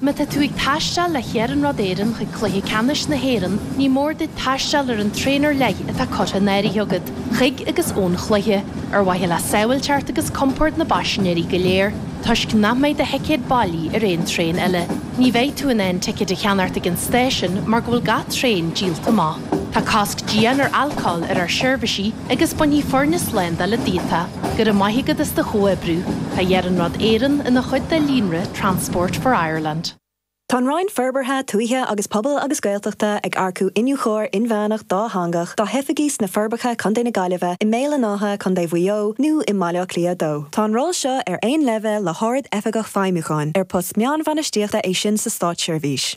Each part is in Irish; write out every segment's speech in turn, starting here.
Má tá tú ag taisteal le hIarnród Éireann chuig Cluiche Ceannais na hÉireann, ní mór duit taisteal ar an traein ar leith atá curtha in áirithe agat, chuig agus ón chluiche. Ar mhaithe le sábháilteacht agus compord na bpaisinéirí go léir, toisc nach mbeidh do thicéad bailí ar aon traein eile, ní bheidh tú in ann ticéid a cheannach ag an stáisiún mar go bhfuil gach traein díolta amach. Tá cosc dian ar alcól ar ár seirbhísí agus bainfidh foirne slándála díot é. Go raibh maith agat as do chomhoibriú. Tá Iarnród Éireann ina chuid de líonra Transport for Ireland. Tá an Roinn Forbartha Tuaithe agus Pobail agus Gaeltachta ag earcú iniúchóir inmheánach dátheangach dá hoifigí sna Forbacha, Co na Gaillimhe, i mBéal an Átha, Co Mhaigh Eo, nó i mBaile Átha Cliath 2. Tá an ról seo ar aon leibhéal le hArd-Oifigeach Feidhmiúcháin, ar post meánbhainistíochta é sin sa státseirbhís.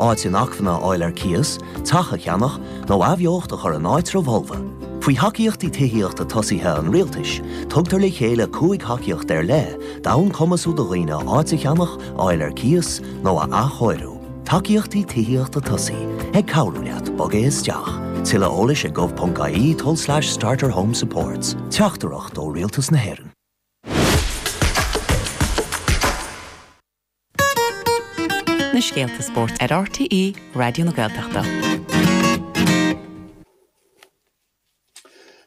Áit inacmhainne a fháil ar cíos, teach a cheannach, nó athbheocht a chur in áitreabh folamh. Faoi thacaíochtaí tithíochta tosaí an rialtais, tugtar le chéile cúig thacaíocht ar leith d'fhonn cumhachtú do dhaoine áit a cheannach, a fháil ar cíos, nó a athchóiriú. Tacaíochtaí Tithíochta Tosaí, ag cabhrú leat bogadh isteach. Tuilleadh eolais ag gov.ie tulslais starterhomesupports. Teachtaireacht ó Rialtas na hÉireann. na scéalta spóirt ar RTÉ Raidió na Gaeltachta.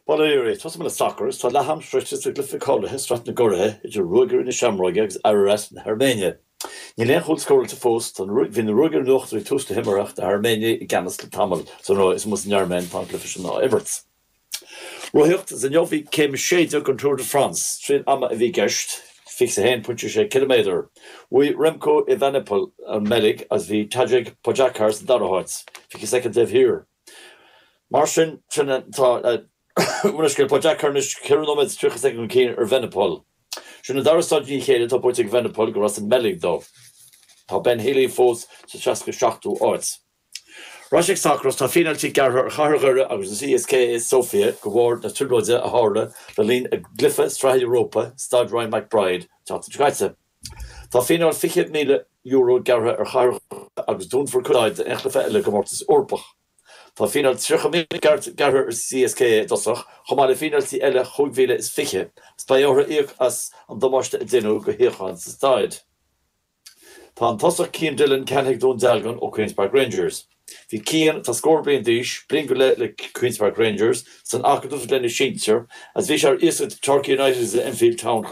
Baileoir, tosóidh mé le sacar is tá leath-am sroichte sa chluiche cáilithe i Sraith na gCuradh idir Ruagairí na Seamróige agus Ararat na hAirméine. Níl aon chúl scóráilte fós, tá na, bhí na Ruagairí in uachtar ag tús na himeartha ach na hAirméinigh i gceannas le tamall. San Airméin atá an cluiche sin á imirt. Rothaíocht is inniu bhí céim a sé déag den Tour de France triail ama a bhí i gceist, fiche a haon pointe sé ciliméadar. Bhuaigh Remco Evenepoel ón mBeilg agus bhí Tadej Pogacar sa dara háit, fiche soicind taobh thiar. Mar sin féin tá Pogacar anois ceithre nóiméad is tríocha soicind chun cinn ar Evenepoel. Sin an dara staid i ndiaidh a chéile atá buaite ag Evenepoel gurb as an mBeilg dó. Tá Ben Healy fós sa seasca seachtú áit. Ar ais go sacar is, tá fíneáiltí gearrtha ar chathair Dhoire agus ar CSKA Sóifia de bharr na trioblóide a tharla le linn a gcluiche sraithe Europa i Staid Ryan McBride, an tseachtain seo caite. Tá fíneáil €20,000 gearrtha ar chathair Dhoire agus dúnfar cuid den staid don chéad chluiche eile i gcomórtas Eorpach. Tá fíneáil €30,000 gearrtha ar CSKA i dtosach, chomh maith le fíneáiltí eile €25,000, agus beidh orthu íoc as an damáiste a deineadh do shuíocháin sa staid. Tá an tosaí Cian Dillon ceannaithe ag Dún Dealgan ó Queens Park Rangers. Bhí Cian, atá scór bliain d'aois, bliain go leith le Queens Park Rangers, san acadamh is leis na sinsir agus bhí sé ar iasacht ag Torquay United is Enfield Town chomh maith.